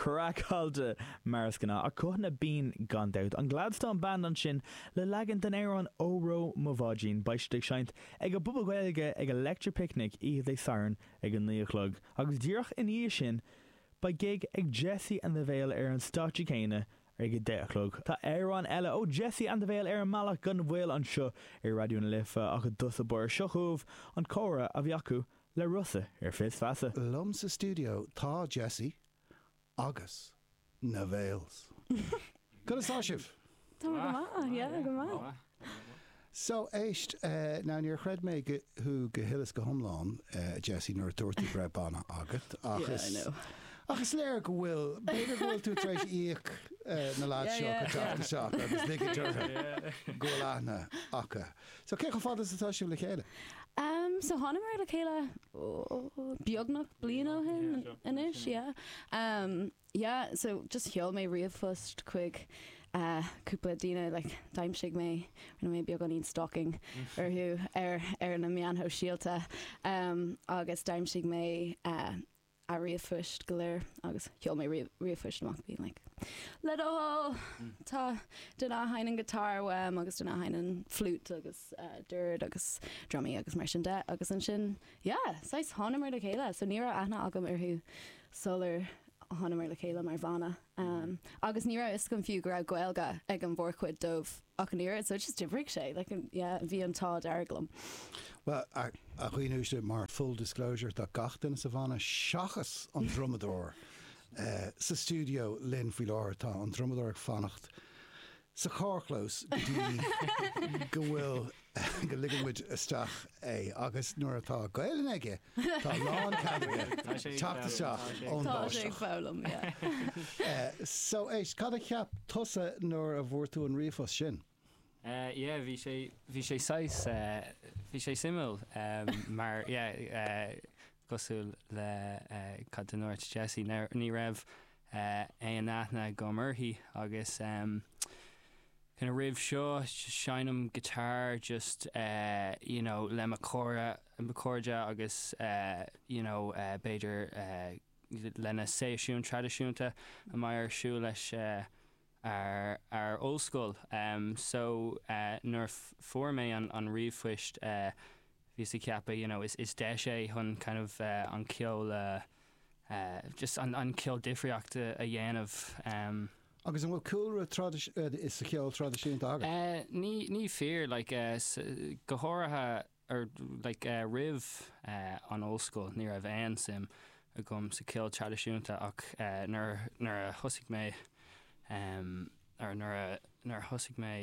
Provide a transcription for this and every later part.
Craiceáilte mar is gnáth, ach guthanna binne gan dabht. An Gladstone Band ansin le leagan den amhrán Óró Mo Bháidín. Beidh siad ag seinnt ag an bPuball Gaeilge ag Electric Picnic oíche Dé Sathairn ag a naoi a chlog, agus díreach ina dhiaidh sin beidh gig ag Jessie and the Veil ar an stáitse céanna ag a deich a chlog. Tá amhrán eile ó Jessie and the Veil ar an mbealach gan mhoill anseo ar Raidió na Life, ach i dtús báire seo chugaibh an comhrá a bhí acu le Rossa ar Fis Feasa. liom sa stiúideo tá Jessie agus na Veils. Conas tá sibh? Tá mé go maith, ah yeah, go maith. So, éist, now níor chreid mé thú go thuilleas go hiomlán, Jessie, nuair a dúirt tú go raibh banna agat, ach is, yeah, I know, ach is léir go bhfuil, b'fhéidir go bhfuil tú tar éis íoc na lads seo chun teacht isteach agus ligint orthu go bhfuil aithne acu. So, cé chomh fada is atá sibh le chéile? Em, so thánamar le chéile, oh, beagnach bliain ó shin anois, yeah. Em, yeah, so just sheol mé ríomhphost chuig eh, cúpla daoine, like, d'aimsigh mé, rinne mé beagáinín stalking orthu ar, ar na meáin shóisialta em, agus d'aimsigh mé eh, a ríomhphoist go léir agus sheol mé ríomhphoist amach being like, hello tá duine a sheinneann guitar uaim agus duine a sheinneann flute agus dord agus drumaí agus mar sin de agus ansin yeah saghas thánamar le chéile so ní raibh aithne agam orthu sular thánamar le chéile mar bhanna agus ní raibh fhios agam fiú go raibh Gaeilge ag an mhórchuid dóibh. Ach an oiread, so just d'oibrigh sé, like an, yeah, bhí an t-ádh dearg liom. Bhuel, a dhaoine uaisle, mar full disclosure, tá gach duine sa bhanna seachas an drumadóir eh, sa stiúideo linn faoi láthair, tá an drumadóir ag fanacht sa charrchlós go dtí go bhfuil go ligeann muid isteach é agus nuair atá Gaelainn aige tá lán cead aige teacht isteach ón báisteach. So éist, cad a cheap tusa nuair a bhfuair tú an ríomhphost sin? Yeah, bhí sé, bhí sé saghas, bhí sé suimiúil mar yeah, Cosúil le cad a ndúirt Jessie, ní raibh aon aithne agam uirthi agus kinda roimh seo seinnim guitar just you know le mo chairde agus you know b'fhéidir leis na seisiúin traidisiúnta a mbeidh ar siúl leis ar ar ollscoil so nuair a fuair mé an an ríomhphost bhíos ag ceapadh you know is is deis é chun kind of an ceol a just an an ceol difríocht a dhéanamh. Agus an bhfuil cúlra traidisiún sa cheol traidisiúnta agat? Ní ní fíor like go háirithe ar like roimh an ollscoil ní raibh aon suim agam sa ceol traidisiúnta ach nuair nuair a thosaigh mé or nuair a nuair a thosaigh mé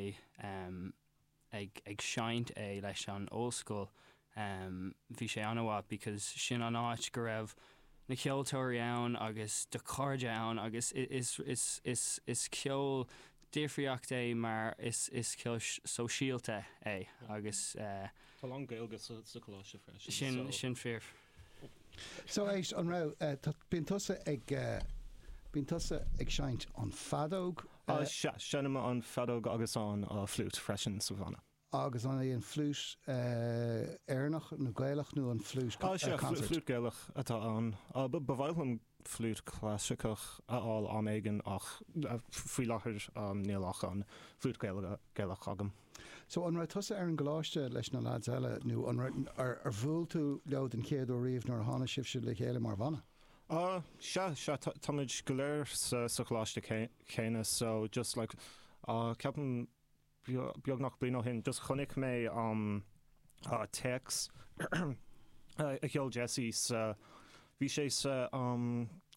ag ag seinnt leis an ollscoil bhí sé an-mhaith because sin an áit go raibh na ceoltóirí ann agus do chairde ann agus is is is is ceol difriúil é mar is ceol sóisialta é agus. Tá Lon Gaeilge sa choláiste freisin so. Sin fíor. So éist an raibh, bíonn tusa ag, bíonn tusa ag seinnt an fheadóg. Sea, seinnim an fheadóg agus an flute freisin sa bhanna. Agus an é an fliúit Éireannach nó Gaelach nó an fliúit concert? Fliúit Gaelach atá ann. Ba mhaith liom fliúit clasaiceach a fháil am éigin ach faoi láthair níl ach an fliúit Gaelach agam. So, an raibh tusa ar an gcoláiste leis na lads eile nó ar bhuail tú leo den chéad uair riamh nuair a tháinig sibhse le chéile mar bhanna? Sea, sea, táimid go léir sa choláiste céanna so just like ceapaim, Beagnach bliain ó shin just chonaic mé an téacs a sheol Jesse sa, bhí sé sa,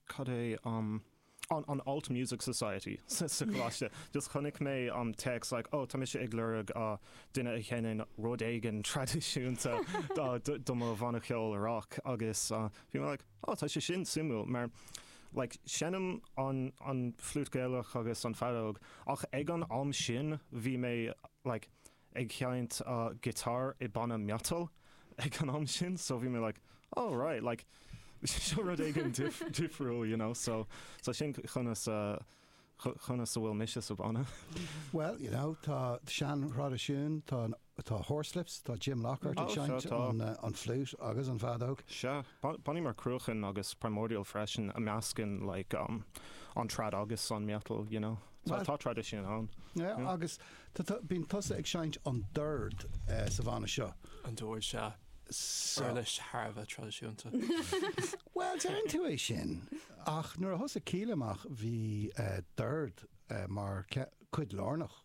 cad é an Alt Music Society sa choláiste, just chonaic mé an téacs like oh tá mise ag lorg duine a sheinneann rud éigin traidisiúnta do mo bhanna ceoil rock agus bhí mé like, Oh tá sé sin suimiúil mar like seinnim an an flute Gaelach agus an fheadóg ach ag an am sin bhí mé like ag seinnt guitar i banna metal ag an am sin so bhí mé like oh right like seo rud éigin difriúil you know so so sin conas a conas a bhfuil mise sa bhanna. Well you know tá sean thraidisiún tá an Tá Horslips, tá Jim Lockhart ag seinnt an flute agus an fheadóg. Sea, bannaí mar Cruachan agus Primordial freisin a meascann like um an trad agus an metal, you know. Tá tá traidisiún ann. Yeah, agus bíonn tusa ag seinnt an dord sa bhanna seo. An dord, sea. Uirlis thar a bheith traidisiúnta. Bhuel, deireann tú é sin, ach nuair a thosaigh Kíla amach bhí dord mar chuid lárnach.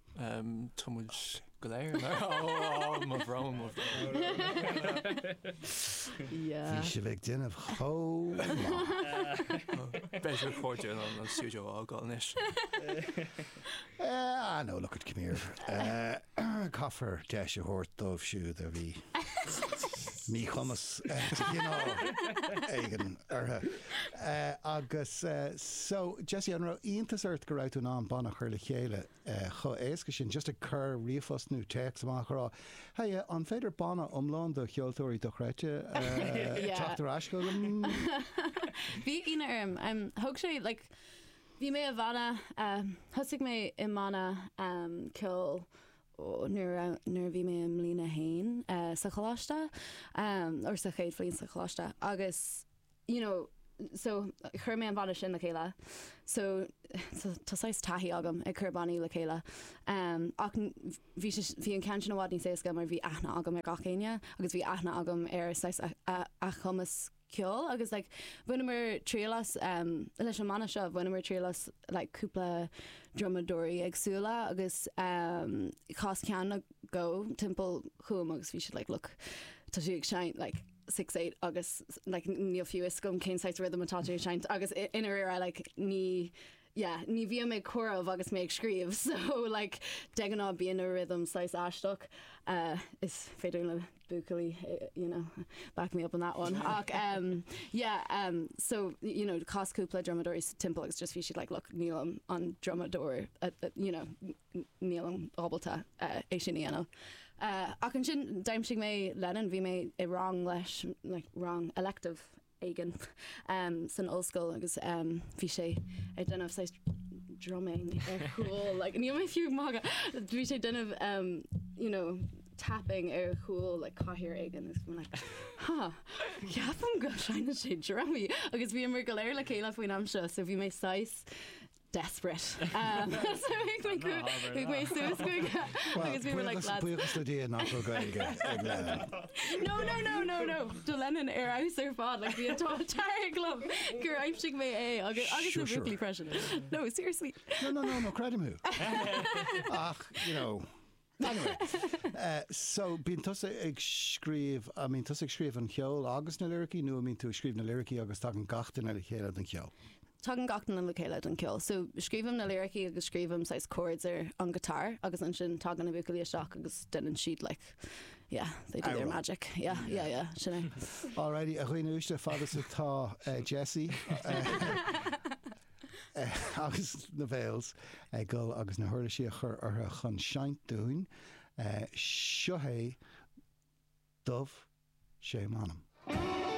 Um, tá muid go léir mar oh, mo bhrón, mo bhrón. yeah. Bhí sibh ag déanamh cho Beidh recording an an studio ágáil inis. Eh, I know, look at come here. Eh, Caithfear deis a thabhairt dóibh siúd a bhí míchumas de chineál éigin orthu agus so Jessie an raibh iontas ort go raibh tú in ann banna a chur le chéile chomh éasca sin just ag cur ríomhphost nó téacs amach a rá hey an féidir banna iomlán de cheoltóirí dochreidte teacht ar ais chugam bhí ionadh orm um, thug sé like bhí mé i mbanna um, thosaigh mé i mbanna um, ceoil nuair a bhí mé i mBliain 1 sa choláiste, or sa chéad bhliain sa choláiste, agus you know so chuir mé an banna sin le chéile, so tá saghas taithí agam ag cur bannaí le chéile, ach bhí sé, bhí an ceann sin i bhfad níos éasca mar bhí aithne agam ar gach éinne agus bhí aithne agam ar saghas a a gcumas ceoil agus like bhaineamar triail as leis an mbanna seo bhaineamar triail as like cúpla drumadóirí éagsúla agus chas ceann acu timpeall chugam agus bhí siad like look tá tú ag seinnt like six eight agus like níl fiú fhios agam cén saghas rhythm atá tú ag seinnt agus I'm like ní yeah, ní bhíom ag comhaireamh agus mé ag scríobh so like de ghnáth bíonn an rhythm saghas aisteach uh, is féidir leis na buachaillí you know back me up on that one ach um, yeah um, so you know chas cúpla drumadóirí timpeall agus just bhí siad like look nílim an drumadóir uh, uh, you know n- nílim ábalta uh, é sin a dhéanamh uh, ach ansin d'aimsigh mé Lennon bhí mé i rang leis like rang elective éigin san ollscoil agus bhí sé ag déanamh saghas drumming ar chúl, like níl mé fiú ag magadh, bhí sé ag déanamh you know tapping ar chúl like cathaoir éigin agus bhí mé like huh ceapaim go seinneann sé drumaí agus bhíomar go léir le chéile faoin am seo so bhí mé saghas desperate. So chuaigh mé suas chuige agus we were like lads. Buíochas le Dia nach raibh Gaeilge ag Lennon. No no no no no tá Lennon ar fheabhas ar fad like bhí an t-ádh dearg liom gur aimsigh mé é agus agus na buachaillí freisin. No seriously. No no no no creidim thú. Ach you know. Anyway, so bíonn tusa ag scríobh, I mean, tusa ag scríobh an cheoil agus na liricí nó an mbíonn tú ag scríobh na liricí agus tagann gach duine le chéile don cheol? Tagann gach duine le chéile don cheol. So scríobhaim na liricí agus scríobhaim saghas chords ar an guitar agus ansin tagann na buachaillí isteach agus deineann siad like, yeah, they do their magic. Yeah, yeah, yeah, sin é. Alrighty, a dhaoine uaisle, fad is atá Jessie. agus na boys ag goil agus na huirlisí a chur ortha chun seinnt dúinn. Seo é Dubh Sé M'anam.